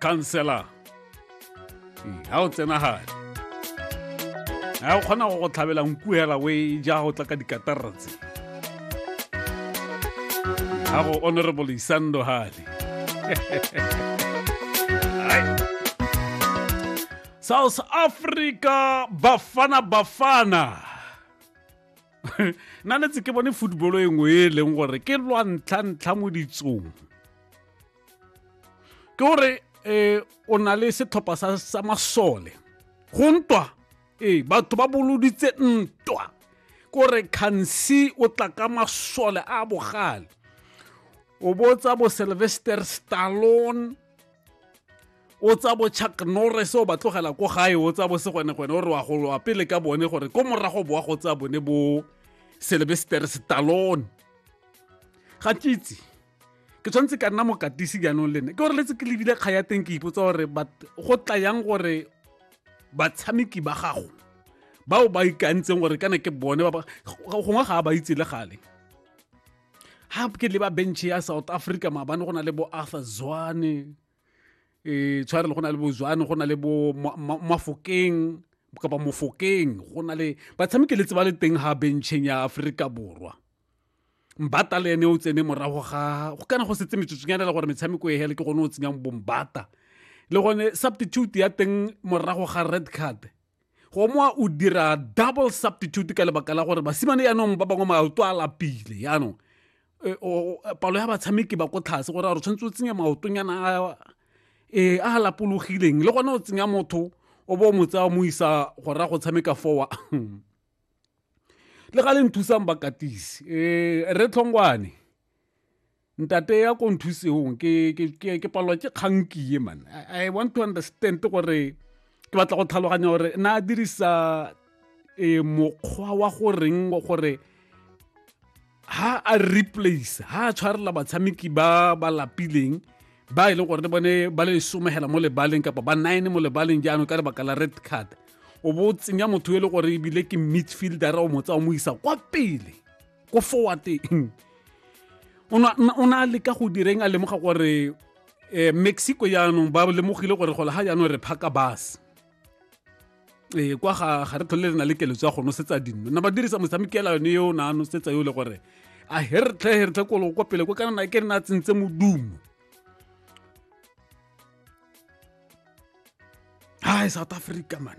counselor hmm, ga o tsena gale ga o kgona go go tlhabela nku hela o e ja go tla ka dikatarra tse ga go honorable isando gale south africa bafana bafana nna letse ke bone football e nngwe e leng gore ke lwa ntlha-ntlha mo ditsong ke gore um o na le setlhopha sa masole go ntwa ee batho ba boloditse ntwa kore khansi o tla ka masole a bogale o botsa bo sylvester stallone o tsa bo chuck norris o ba tlogela ko gae o tsa bo segwenegwene o re wa golowa pele ka bone gore ko morago boa go tsa bone bo sylvester stallone ga ke itse ke tshwanetse ka nna mokatisi jaanong le nne ke gore letse ke lebile kga ya teng ke ipotsa gore go tla yang gore batshameki ba gago bao ba ikantseng gore kana ke bone gongwe ga a ba itse le gale ha ke le ba bench ya south africa maabane go na le bo arthur zwane um tshware le go na le bo zwane go na le bo mafokeng kapa mofokeng go na le batshameki le tseba le teng ha bencheng ya aforika borwa mbata le ene o tsene morago ga go kana go setse metsotsonyana le gore metshameko e hele ke gone o tsenyang bombata le gone substitute ya teng morago ga red card go moa o dira double substitute ka lebaka la gore basimane yaanong ba bangwe maoto a lapile yaanong e, palo ya batshameki ba ko tlhase gore a re tshwanetse o tsenya maotonyana a e, a lapologileng le gone o tsenya motho o bo mo tsaya mo isa go ra go tshameka fowa le ga le nthusang bakatisi e, re tlhongwane ntate ya ko nthuseng ke palwa ke kgankie man i want to understand gore ke batla go tlhaloganya gore na a dirisa e mokgwa wa go reng gore ha a replace ha a tshwarela batshameki ba ba lapileng ba e leng gore le bone ba le somegela mo lebaleng kapa ba nine mo lebaleng jaanong ka lebaka la red card o bo tsenya motho e le gore ebile ke midfielder o motsa o mo isa kwa pele ko forwardeng o ne a leka go direng a lemoga gore um mexico yaanong ba lemogile gore go lega jaanong re phaka bus ee kwa ga ga re tlhole re na le keletso ya go nosetsa dinno na ba dirisa motshamekela yone yo o ne a nosetsa yo le gore a he re tlhe he re tlhe kolo kwa pele ko kana na ke re na tsentse modumo hai south africa man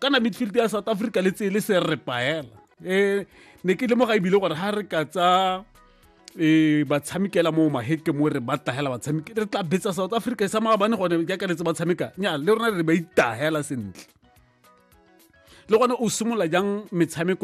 kana midfield ya south africa le tsele se re paela um eh, ne ke lemoga ebile gore ga re ka tsa e ba tshamikela mo maheke mo re ba tahela ba tshamike re tla betsa south africa sa mga bane gone jaaka letse ba tshameka nya le rona re ba itahela sentle le gone o simolola jang metshameko